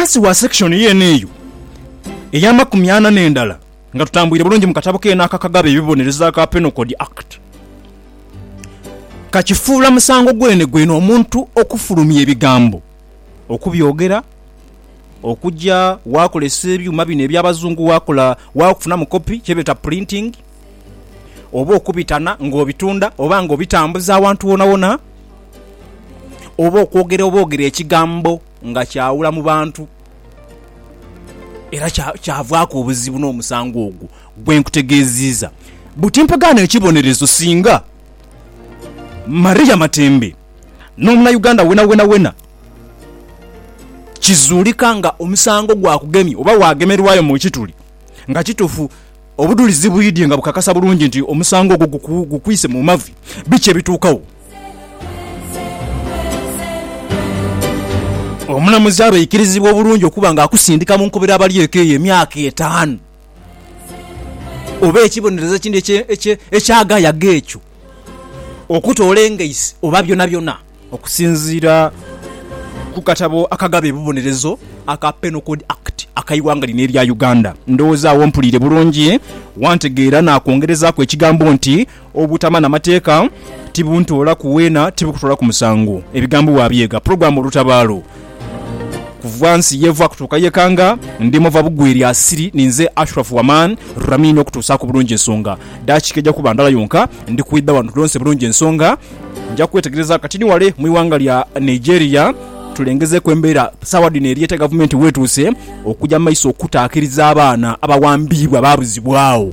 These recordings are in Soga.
Ghansi wa sekishoni yeene eyo ey'amakumi ana n'endala, nga tutambuire bulungi mu katabo keene aka Kagaba Ebibonerezo aka Penal Code Act, kakifuula musango gwenegwene omuntu okufulumya ebigambo, okubyogera, okuja waakozesa ebyuma bino eby'Abazungu waakola, waafunamu kopi, kye beeta printing, oba okubitana nga obitunda oba nga obitambuza awantu wonawona, oba okwogera obwogere ekigambo nga kyawula mu bantu, era kyavaaku obuzibu n'omusango ogwo gwe nkutegeeziiza. Buti mpa ghano ekibonerezo singa Maria Matembe n'Omunauganda wenawenawena kizuulika nga omusango gwakugemye oba waagemerwayo mu kituli nga kituufu. Obudhulizi bwidhye nga bukakasa bulungi nti omusango ogwo gukwise mu mavi. Biki ebituukawo? Omulamuzi aba aikirizibwa obulungi okuba nga akusindika mu nkobera abali eka eyo emyaka etaanu oba ekibonerezo ekindi eky'agayaga ekyo, okutoola engaisi oba byonabyona. Okusinziira ku katabo akagaba ebibonerezo aka Penal Code Act ak'eighanga lino erya Uganda, ndowooza agho mpuliire bulungi wantegeera naakwongerezaaku ekigambo nti obutama na mateeka tibuntoolaku weena tibukutoolaku musango. Ebigambo waabyega pulogulaamu Olutabaalo kuva nsi y'eva kutuuka y'ekanga, ndi mova bugwe lya siri ninze Ashraf Waman Ramin okutuusaaku bulungi ensonga. Daakiika eja kuba ndala yonka ndi kwidha wano tulonse bulungi ensonga. Nja kwetegereza kati ni wale mu ighanga lya Nigeria tulengezeeku embeera saawa dhino eri ete gavumenti wetuuse okuja mu maiso okutaakiriza abaana abawambiibwa baabuzibwagho.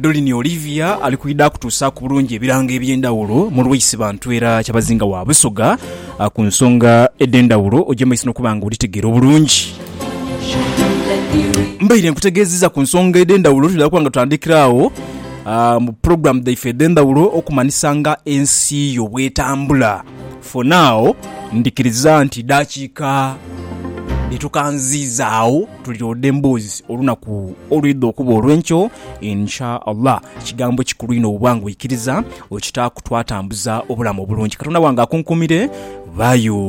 Dolini Olivia ali kwidha kutuusaaku bulungi ebirango eby'endhawulo mu Lwaisi bantu era kyabazinga wa Busoga ku nsonga edh'endhawulo ogy'emaiso n'okuba nga odhitegeera obulungi. Mbaire nkutegeezizza ku nsonga edh'endhawulo twidha kuba nga tutandikira agho mu pulogulaamu dhaife edh'endhawulo okumanhisa nga ensi yo bw'etambula. For now ndhikiriza nti daakiika dhetukanziizaagho. tulyode emboozi olunaku olwidha okuba olw'enkyo insha Allah. Kigambo kikulu inho bwoba nga oikiriza okitaaku twatambuza obulamu obulungi. Katonda wange akunkumire. Bayo.